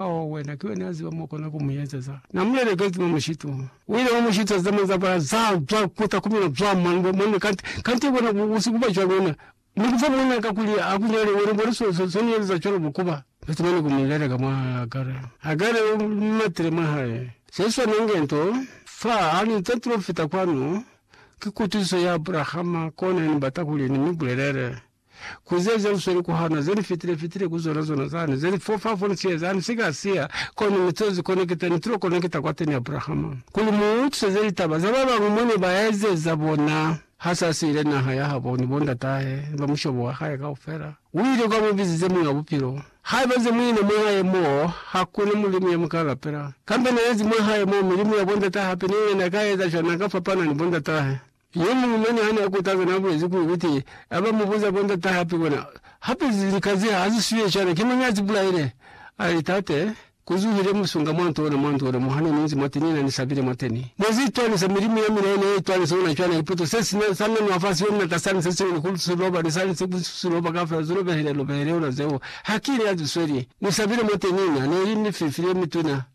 Ao, wena, ki wena ya ziba mo kona ku mu ezeza. Na mu lelekezi mwa mushitu. U ile mwa mushitu za zamani za bala za, za kuta ku mina zwa mwanube, mwanube, kanti, kanti bona ku, ku si kuba cwalo wena. Ni kufa mona ka kuli a ku nyale wena, bona so, so, so ni ezeza cwalo bo kuba. Kanti mane ku mu leleka mwa Hagare. Hagare u mi matile mwa hae. Se swana nge nto, fa, ha ni nze ntulo fita kwanu, ki kutusiso ya Abrahama, kona ya ni bata kuli ni mi bulelele. Ku ze ze lusweli ku hana, ze li fitile fitile ku zona zona zani, ze li fofa fo ni siya zani, si ka siya, kono ne to zi konekita, ne tulo konekita kwateni Abrahama. Kuli mu utwiseze litaba za babañwi mo ne ba ezeza bona. Ha sa siile naha ya habo ni bo ndatahe, ni ba mushobo wa hae kaufela, u ile kwa mu bizize Muñ'a Bupilo. Haiba ze mu ina mwa hae mo, ha ku na mulimu ya mu ka lapela. Kambe na ezi mwa hae mo, milimu ya bo ndatahe hape, ni yena na ka eza cwani? Na ka fapana ni bo ndatahe. Yo muñwi-mane hane akutaza naabulezi kuli kuti aba mubuza bo ndata hape bona hape lika ze haziswiye cana ki mañi azibulaile. Ali, Tate, kuzuhile musunga mwa nto ona mwa nto ona mo hane ninzi mwateni na nisabile mwateni. Nezi itwanisa milimu ya mina ine itwanisa ona cwana ipoto se sina sa nanwa fa siyo mina ka sani se siñwi ni ku siloba ni sani se ku siloba kafela zilobehile lobehile ona zeo. Hakini azisweli. Nisabile mwateni na neli ni fifi ye mituna.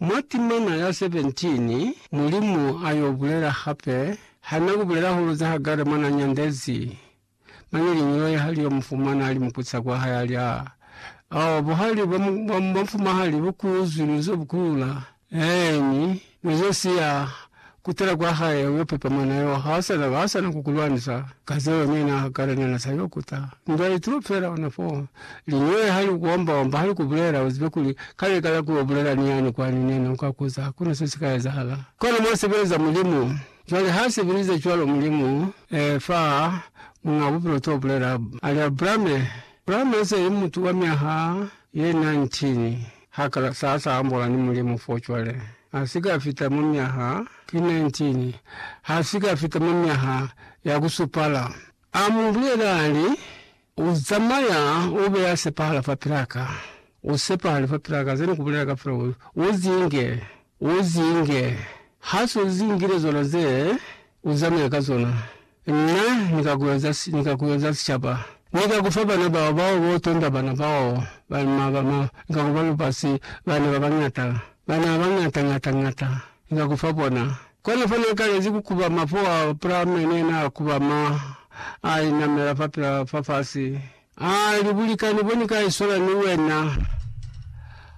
Mwa timana ya 17, Mulimu a yo bulela hape, Ha na ku bulela hulu za Hagare mwa na nyandezi, mane liñi loye ha li yo mu fumana a li mupuca kwa hae a li, A, ao buhali bwa, bwa, bwa mufumahali bu ku zwi, nu zo bu kulula, eeni, nu zo siya, Kutala kwa hae uyo pepama na yo ha sana ba sana ku kulwanisa ka zeo nyana kala nyana sa yo kuta ndwa itulo fela ona fo linyole hali ukuomba omba hali kubulela uzibe kuli kale kala ku yo bulela ni yani kwani nena uka kuza hakuna se sika ezahala kona mwa sebeleza mulimu cwale ha sebelize cwalo mulimu e fa munga bupilo to bulela ali abrame abrame ese li mutu wa myaha ye 19 ha kala sa sa ambola ni mulimu fo cwale Ha si ka fita mwa myaha ki 19, ha si ka fita mwa myaha ya ku supala. A mu bulela, a li, U zamaya, u be ya sepahala fapil'a ka. U sepahale fapil'a ka, ze ni ku bulela kafela, u, u zinge, u zinge. Ha s'u zingile zona ze, u zamaye ka zona. Na ni ka ku eza, ni ka ku eza sicaba. Ni ka ku fa bana bao, bao bo tonda bana bao, ba, ma, ba, ma, Ni ka ku ba lubasi, bana ba bañata, bana ba bañata ñata ñata, Ni ka ku fa bona. Kona fa na kalezi ku kuba mapoa pra mene, na kuba ma a inamela fa pila fa fasi. A li, Bulikani bo ni ka isola ni wena,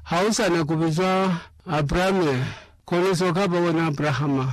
ha u sa na ku bizwa Abrame, kono se u ka ba wena Abrahama.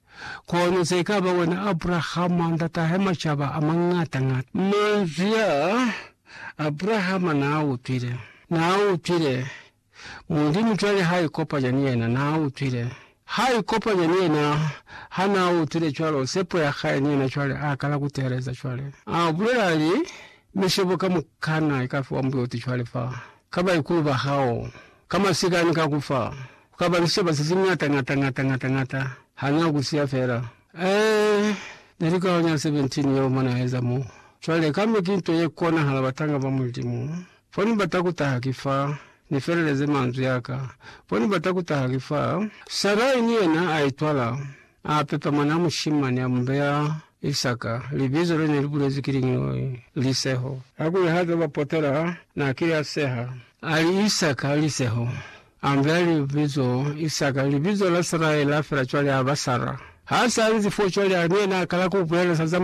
Kono ze ka ba wena Abrahama, ndatahe macaba a mañata-ñata. Manzwi a Abrahama n'a utwile. N'a utwile. Mulimu cwale ha ikopanya ni yena. N'a utwile. Ha ikopanya ni yena. Ha n'a utwile cwalo, sepo ya hae ni yena cwale a kala ku teeleza cwale. A bulela, a li, Mi sebo kamukana i ka fiwa mbuti cwale fa, ka baikulu ba hao, Ka masika ni ka ku fa. Ku ka ba ni sicaba se si ñata ñata ñata ñata ñata. Ha na ku siya fela. Ee, ne li kaho nya 17 yeo mwa na eza mo. Cwale, kambe ki nto ye konahala batanga ba Mulimu. Fo ni bata ku taha ki fa, ni feleleze manzwi a ka. Fo ni bata ku taha ki fa. Sarai ni yena a itwala. A pepa mwanaa mushimani, a mu beya Isaka, libizo le ne li bulezwi ki liñi loi? Liseho. Kakuli ha zwa bapotola, na kile a seha. A li, Isaka, Liseho. A mu beya libizo Isaka, libizo la Sarai la fela cwale a ba Sara. Ha sa nzi fo cwale, a ni yena a kala ku bulela sa za mwanaa.